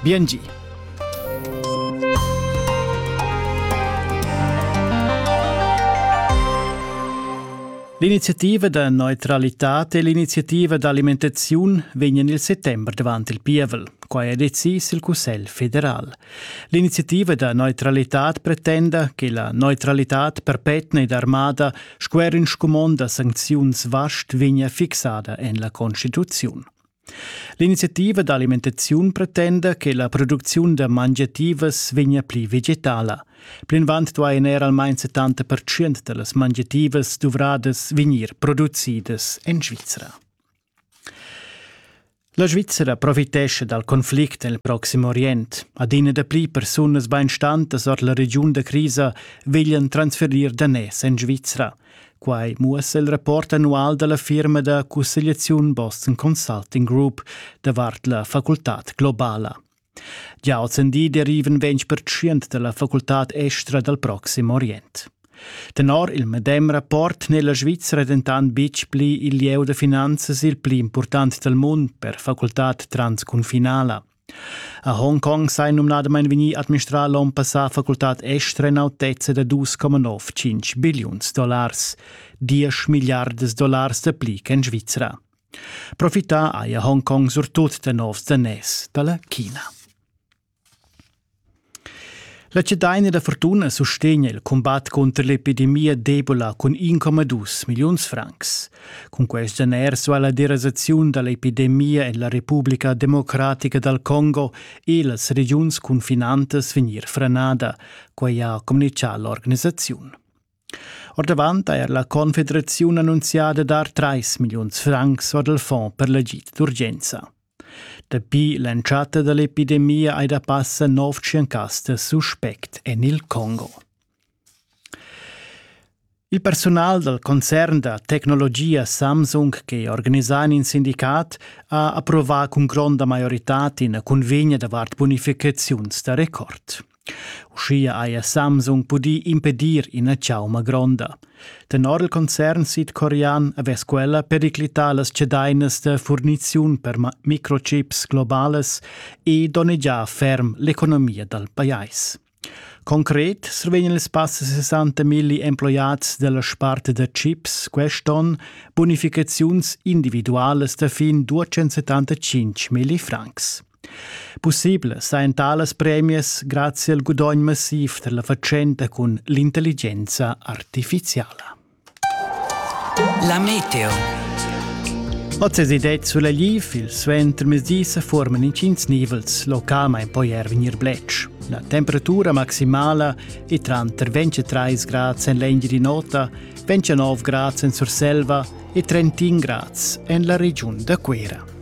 Biengi! L'iniziativa da neutralità e l'iniziativa d'alimentaziun vegnan il settembre davant il pievel. Quai è decis il Cussegl federal. L'iniziativa da neutralità pretenda che la neutralità perpetna ed armada sco er in scumond da sancziuns vast vegnia fixada en la Constituziun. L'iniziativa d'alimentaziun pretenda che la producziun da mangiativas vegnia pli vegetala. Plinavant duain er almain 70% da las mangiativas duvradas vegnir producidas en Svizra. La Svizzera profitescha dal conflict nel Proxim Orient. Adina dapli persunas bainstantas ord la regiun da crisa veglian transferir daners en Svizra. Quai muossa il rapport annual dalla firma da cussegliaziun Boston Consulting Group davart la facultad globala. Gia ozendi derivan ventg pertschient dalla facultad estra dal proxim Orient. Tenor il medem rapport n'è la Svizra dentant betg pli il lieu da finanzas il pli important dal mund per facultad transcunfinala. A Hongkong sei numnadamain vegnì administrà l'onn passà facultad estra in autezza da 2,95 billiuns dollars, 10 milliardas dollars dapli ch'en Svizra. Profità haja Hongkong surtut da novs daners da la China. La Cedina da Fortuna sustegna il combat cunter l'epidemia d'Ebola cun 1,2 milliuns francs. Cun quest geners va la derasaziun da l'epidemia en la Repubblica Democratica dal Congo e las regiuns confinantas vegnir franada, quai ha communitgà l'organisaziun. Ordavant ha er la Confederaziun annunziada dar 3 milliuns francs or dal fond per l'agid d'urgenza. Dapi l'entschatta da l'epidemia ei da passa nov tschiencaster suspect en il Congo. Il personal dal concern da tecnologia Samsung che organisa in sindicat ha approvà cun gronda maioritad ina cunvegna davart bunificaziuns da record. Uschia haja Samsung pudì impedir ina chauma gronda. Tenor il concern sidcorean avess quella periclità las cedainas da furniziun per microchips globalas e donnegià ferm l'economia dal pajais. Concret survegnan ils passa 60 milli emploiads dalla sparte da chips quest'onn bonificaziuns individualas da fin 275 milli francs. Pussibel sajan talas premias grazie al gudogn massiv da la fatschenta cun l'intelligenza artificiala. La meteo. Oz es id sulla liv, il suentermezdi se forman incins nivels, localmain poi er vegnir bletsch. La temperatura maximala è tranter 23 grad en l'Engeri Nota, 29 grad en Surselva e 31 grad en la regiun da Cuera.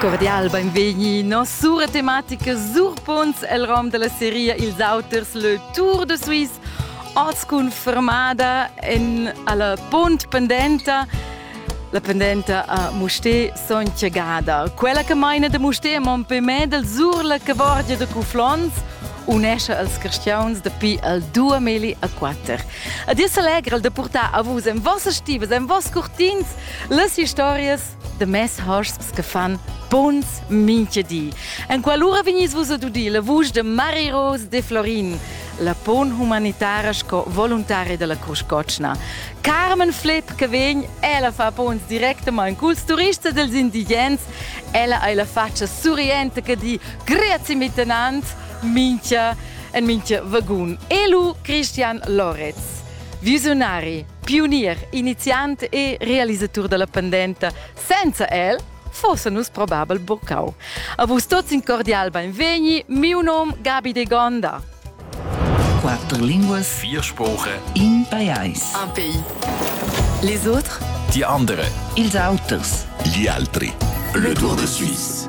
Cordial benvegni nos sura tematica sur Punts el rom della seria Ils auters le Tour de Suisse oz cun fermada en alla Punt pendenta la pendenta a Musté Soncia Gada. Quella che maina de Musté a Montpellier sur la cavorgia de Cuflons unesce als cristians dapi al 2004. A Dies allegra el de portar a vus en vossas stivas, en voss curtins, las historias de mes hosps che fan buns minche di. En qualora vegnis vus ad udir la vusch de Mari Rose de Florin, la pon humanitara sco voluntaria della Cruscocna. Carmen Flipp che vegn, ella fa pons directamente culs turists e dels indigens, ella ha la faccia surriente che di grazie miteinander mincha en minche vagun. Elu Christian Loretz. Visionari. pionier, iniziant e realisatur dalla pendenta. Senza el fosse nus probabel boccau. A vus tuts in cordial benvegni, miu nom Gabi de Gonda. Quattro lingue, vier Sprache, in pajais, un pays. Les autres, die andere, ils auters, gli altri. Le Tour de Suisse.